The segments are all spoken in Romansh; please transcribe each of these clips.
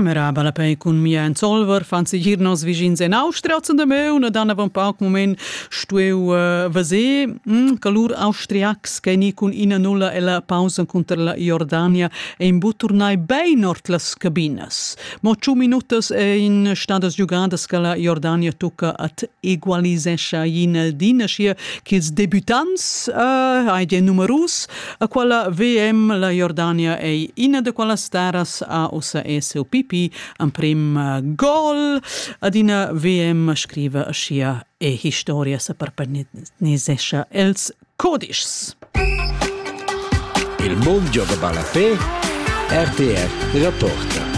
Meraba la pei cun mia en Solver fan se gir nos vischins en Austria zum de meun ed han pau moment stueu uh, vese mm, che lur austriacs che ni cun ina nulla ella pausa conter la Jordania ein bu turnai bein ord las cabinas. Mo ciu minutas e in stadas giugadas che la Jordania tucca at egualisescha in el dina schia ch'ils debutants uh, hai de numerus A quella VM la Jordania ei ina de quellas staras a ussa SOPP emprim eh, gol ad ina VM scriva aschia e historia se perpenisescha els codischs. Il mondo gioca ballapé RTR Reporter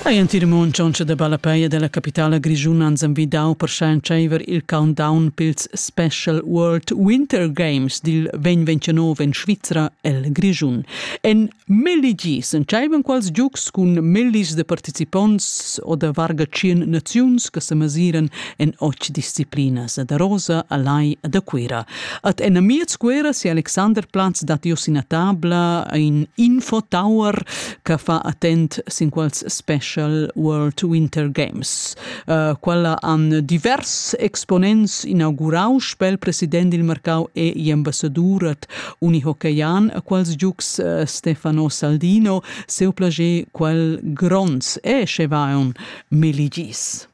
Ei entir mund tschauntscha da ballapei e dalla capitala grischuna ans envidau per schar entscheiver il countdown pils Special World Winter Games dil 2029 en Svizra el Grischun. En melli gis entscheivan quals giugs cun mellis de participonts o da varga tschien naziuns che semasiran en och disciplinas da Rosa, Alai e da Cuira. At en amiez Cuira si Alexander Platz dat ios ina tabla, ein info tower che fa attent sin quals Special World Winter Games. Uh, quella han divers exponents inaugurau spel president il mercau e ambassadur at Unihockeyan a quals giugs uh, Stefano Saldino seu plager quel gronds e schevaon meligis.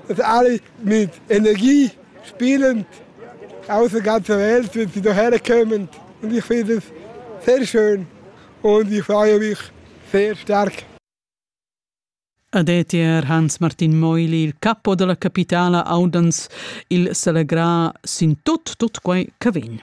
dass alle mit Energie spielend aus der ganzen Welt, wenn sie hierher kommen. Und ich finde das sehr schön und ich freue mich sehr stark. Adetier Hans-Martin Meuli, il capo della capitala Audans, il celebrà sin tut, tut quei che vegn.